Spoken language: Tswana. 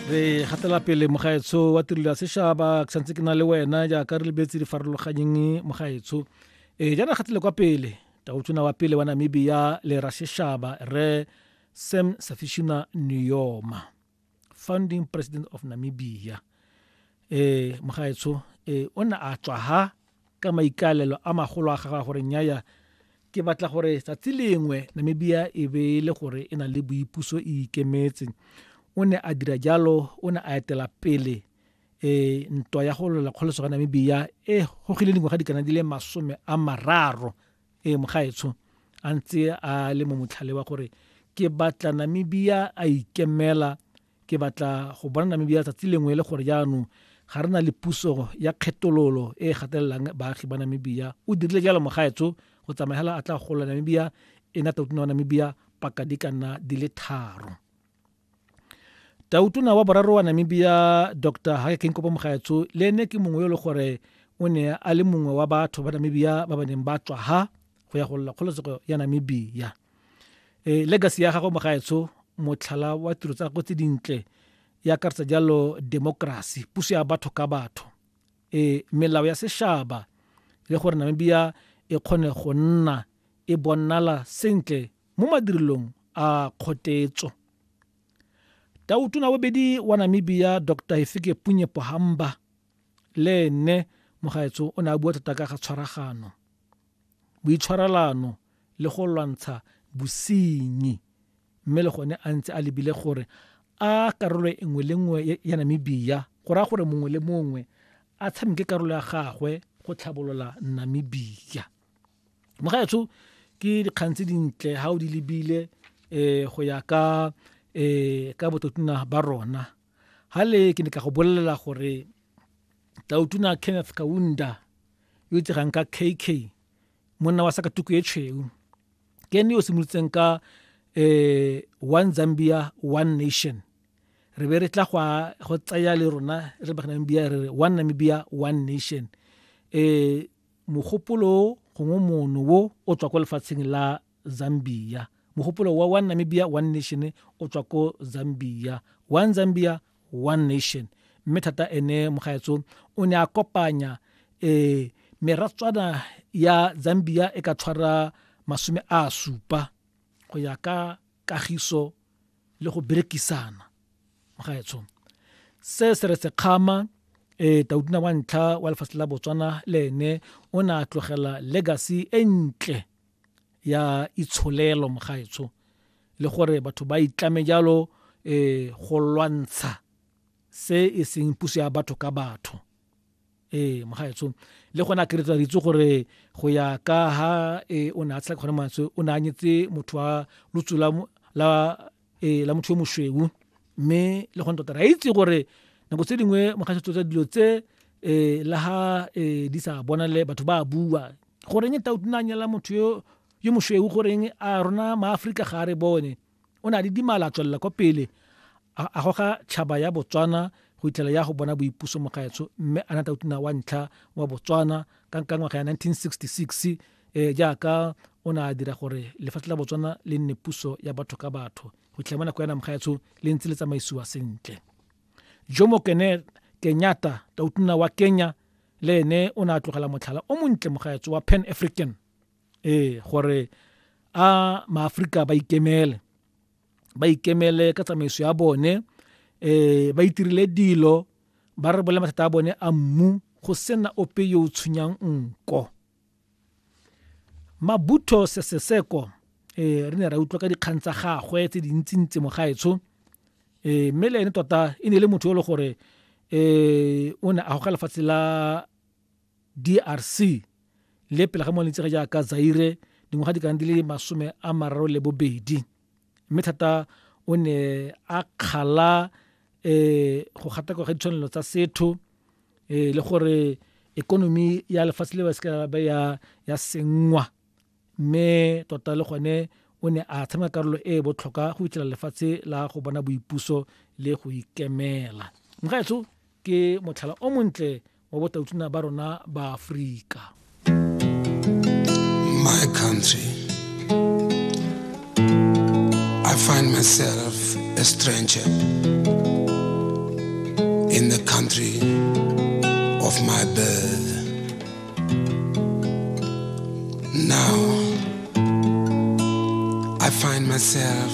re gatela pele mogaetsho wa tirelo ya sešaba ke santse ke na le wena jaaka re lebetse di farologanyeng mogaetsho e jaana gatele kwa pele taotona wa pele wa namibia le ra sešaba re sam safishuna neoma founding president of namibia e mogaetsho e o ne a tswa ha Ka maikaelelo a magolo a gagwe a gore nnyaya, ke batla gore tsatsi lengwe Namibia e be e le gore e na le boipuso e ikemetse, o ne a dira jalo, o ne a etela pele e ntwa ya go lwela kgoloso ga Namibia e gogile dingwaga di kana di le masome a mararo e mogaetsho a ntse a le mo motlhale wa gore ke batla Namibia a ikemela Ke batla go bona Namibia tsatsi lengwe e le gore jaanong ga re na le puso ya kgetololo e e gatelelang baagi ba Namibia. O dirile jalo mogaetso go tsamaya hela a tla gola Namibia e na tautona wa Namibia paka di ka nna di le tharo. Tautona wa boraro wa Namibia Dr. Hage Geingob Mogaetso le ene ke mongwe yo e le gore o ne a le mongwe wa batho ba Namibia ba ba neng ba tswa ha go ya go lla kgololesego ya Namibia. e legacy ya gagwe mogaetsho motlhala wa tiro tsa gagwe tse dintle e akaretsa jalo democracy puso ya batho ka batho e melao ya sešaba le gore namibia e kgone go nna e bonala sentle mo madirelong a kgotetso tautona bobedi wa namibia dr efike punye pohamba le ene mogaetsho o ne a bua thata ka ga tshwaragano boitshwarelano le go lwantsha bosenyi mme le gone a ntse a lebile gore a karolo e nngwe le nngwe ya Namibia go raya gore mongwe le mongwe a tshameke karolo ya gagwe go tlhabolola Namibia mogaetsho ke dikgang tse dintle ga o di lebile um go ya ka um ka bototona ba rona Hale ke ne ka go bolelela gore Tautona Kenneth Kaunda yo itsegang ka KK monna wa sakatuku e tshweu ke ene yo simolotseng ka eh one Zambia one nation re be re tla go go tsaya le rona re ba Namibia re re one Namibia one nation eh mogopolo gongwe mono wo o tswa kwa lefatsheng la Zambia. Mogopolo wa One Namibia, One Nation o tswa ko Zambia. One Zambia, One Nation. Mme thata ene mogaetso o ne a kopanya eh meratswana ya Zambia e ka tshwara masome a supa go ya ka kagiso le go berekisana mogaetsho se se re sekgama e eh, tautuna wa ntlha wa lefatshe la botswana le ene o ne a tlogela legacy e ntle ya itsholelo mogaetsho le gore batho ba itlame jalo eh go lwantsha se e seng puso ya batho ka batho eh mogaetsho le gone a keretsa ritse gore go ya ka ha e o ne a tshela kgone mantswe o ne a nyetse motho wa lutsu la ee la motho yo mosweu mme le gone tota re a itse gore nako tse dingwe mogasetso tsa dilo tse um la ga um di sa bonale batho ba a bua goreng tau tuna nyala motho yo yo mosweu goreng a rona maaforika ga a re bone o ne a le dimala a tswelela kwa pele a goga tšhaba ya botswana go itlhela ya go bona boipuso mogaetsho mme a na tau tuna wa ntlha wa botswana ka nka ngwaga ya 1966 e jaaka o ne a dira gore lefatshe la botswana le nne puso ya batho ka batho go tlhela mo nako ya namgaetsho le ntse le tsamaisiwa sentle jomo kene kenyata tautona wa kenya le ene o ne a tlogela motlhala o montle mogaetso wa pan african ee gore a maaforika ba ikemele ba ikemele ka tsamaiso ya bone um ba itirile dilo ba re bole mathata a bone a mmu go sena ope yo o tshwenyang nko mabutho seseseko um eh, re ne ra utlwa ka dikgang tsa gagwe tse dintsintsi mogaetsho um eh, mme le ene tota e ne e le motho yo e le gore um o ne a goga lefatshe la d r c le pele ga mo lentse ga jaaka zaire dingwaga di kana di le masome a mararo le bobedi mme thata o ne a kgala um go gatakwa ga ditshwanelo tsa setho um le gore ekonomi ya lefatshe le ba se ba ya senngwa mme tota le gone o ne a tshameka karolo e e botlhokwa go fitlhela lefatshe la go bona boipuso le go ikemela mgaetso ke motlhala o montle wa botautuna ba rona ba aforika my country i find myself a stranger in the country of my birth now i find myself